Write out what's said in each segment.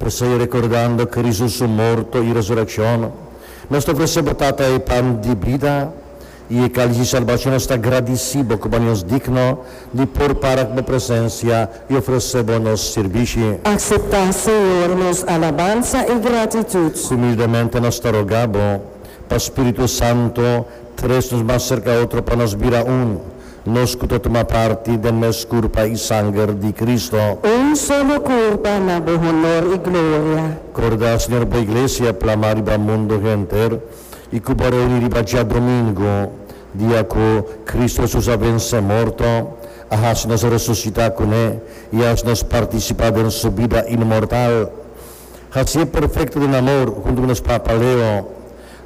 P'esei, rekordando Kristu su morto i resurekshon, nos ta ofresé bo, Tata, e pan di bida i e kális di salbashon. Nos ta gradisí bo ku bo hani'os digno di por para ku bo presensia i ofresé bo nos sirbishi. Akseptá, Señor, nos alabansa i gratitut. Humildemente nos ta rogá bo pa spiritu santu tres nos mas serka otro pa nos bira un, Nos ku ta tuma parti den mes kurpa i sanger di Kristu. Un solo kurpa na Bo honor i gloria. Korda, Señor, Bo Iglesia plamá riba mundu henter i ku Bo reuní riba djadomingu, dia ku Kristu Hesus a vensé morto, a hasi nos resusitá kuné i a hasi nos partisipá den Su bida inmortal. Hasié perfekto den amor huntu ku nos papa Leo,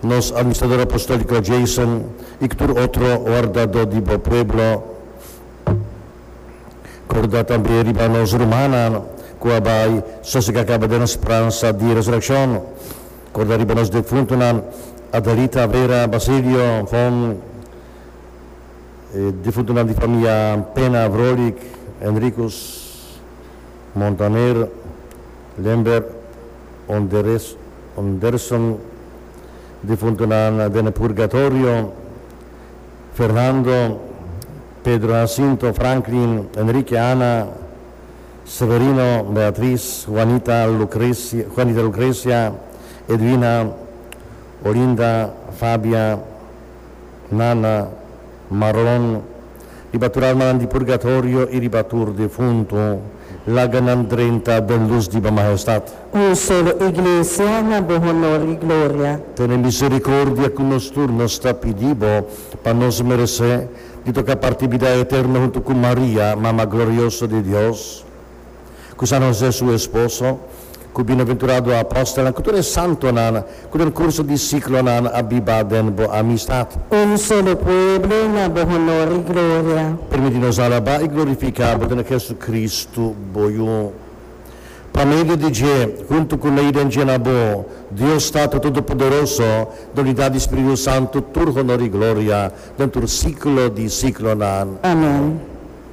Nos Administrador Apostolico Jason y tur otro wardado di bo pueblo, corda tambe riba nos rumannan cu a bay sosega caba den speransa di resurreccion. Corda riba nos defuntonan Adelita, Vera, Basilio, Von, e defuntonan di famia Pena, Vrolijk, Henricus, Montaner, Limburg, Un derson difuntunan den e purgatorio, Fernando, Pedro Jacinto, Franklin, Enrique, Ana, Severino, Beatriz, Juanita, Lucrecia, Edwina, Olinda, Fabia, Nana, Maron, riba tur almanan di purgatorio i riba tur defuntu, laga nan drenta den lus di bo Mahestad. Un solo Iglesia na bo honor i gloria. Tene misericordia cu nos tur, nos ta pidi bo, pa nos merece di toca parti bida eterno huntu cu Maria, Mama glorioso di Dios, ku San José su esposo, ku bienaventurado apòstelnan, ku tur e santonan ku den kurso di siklonan a biba den bo amistat. Un solo pueblo na bo honor i gloria. Permití nos alabá i glorifiká bo den Hesukristu, bo Yu. Pa medio di dje, huntu ku Lei den dje na bo, Dios Tata Todopoderoso, nan di da di Spiritu Santu tur honor i gloria den tur siklo di siklonan. Amèn.